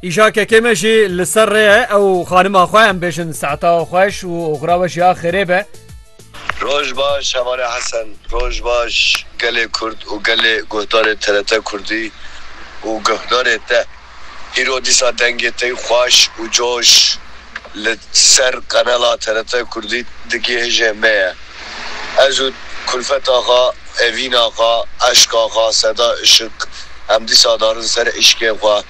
Îşa kekê me jî li ser rê ye ew xanima xwe em bêjin saeta xweş û oxira we jî ya xêrê be. Roj baş Şevare Hesen. Roj baş gelê Kurd û gelê guhdarê TRT Kurdî û guhdarê te. Îro dîsa dengê tey xweş û coş li ser qenela TRT Kurdî digihêje me ye. Ez û Kulfet axa, Evîn axa, Eşk axa, Seda Işık em dîsa darin ser îşkê xwe.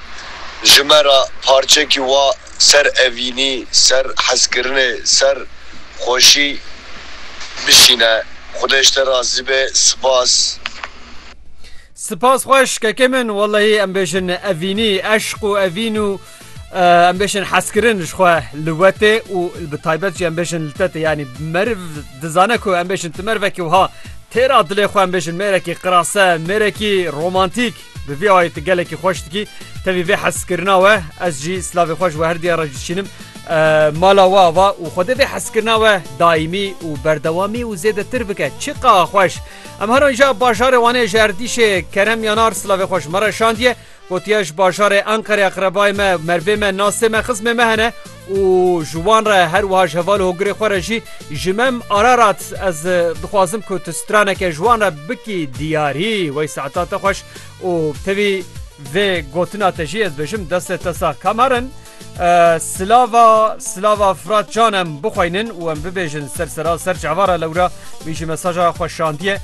Ji me re parçekî wa ser evînî, ser hezkirinê, ser xweşî bişîne. Xwedê ji te razî be. Sipas. Sipas xweş kekê min, wellehî em bêjin evînî, eşq û evîn û Em bêşin hezkirin ji xwe li wetê û bi taybet jî em bêşin li tetê yanî meriv dizane ku em bêşin ti mervekî wiha têra dilê xwe em bêşin mêrekî qirase mêrekî romantîk bi vî ayê tu gelekî xweş dikî tevî vê hezkirina we ez jî silavê xweş we her diya re dişînim mala we ava û xwedê vê hezkirina we daîmî û berdewamî û zêdetir bike çi qa xweş em heran ja bajarê wanê ji erdîşê kerem yanar silavê xweş me re şandiye Gotiye ji bajarê Enqerê eqrebayê me, mervê me, nasê me, xizmê me hene û ji wan re her wiha ji heval û hogirê xwe re jî ji me Ararat ez dixwazim ku tu straneke ji wan re bikî diyarî wey saeta te xweş û tevî vê gotina te jî ez dibêjim destê te sax Kameren. Silava silava Fırat Can em bixweynin û em bibêjin ser sera ser çavara lewra wî jî mesaja xwe şandiye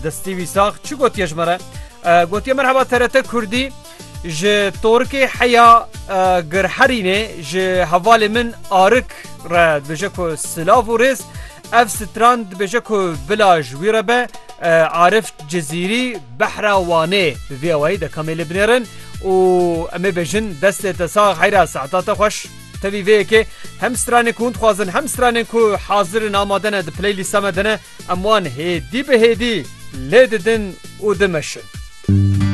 destî wî sax çi gotiye ji me re gotiye merheba TRT Kurdî ji Torkê heya girherînê ji hevalê min arik re dibêje ku silav û rêz Ev stran dibêje ku bila ji wî re be Arif Cizîrî behra Wanê bi vî awayî de kamê lê binêrin û em ê bêjin destê te sax heyra saeta te xweş. Tevî vê yekê hem stranên ku hûn dixwazin hem stranên ku hazir in amade ne di playlîsta me de ne em wan hêdî bi hêdî lê didin û dimeşin.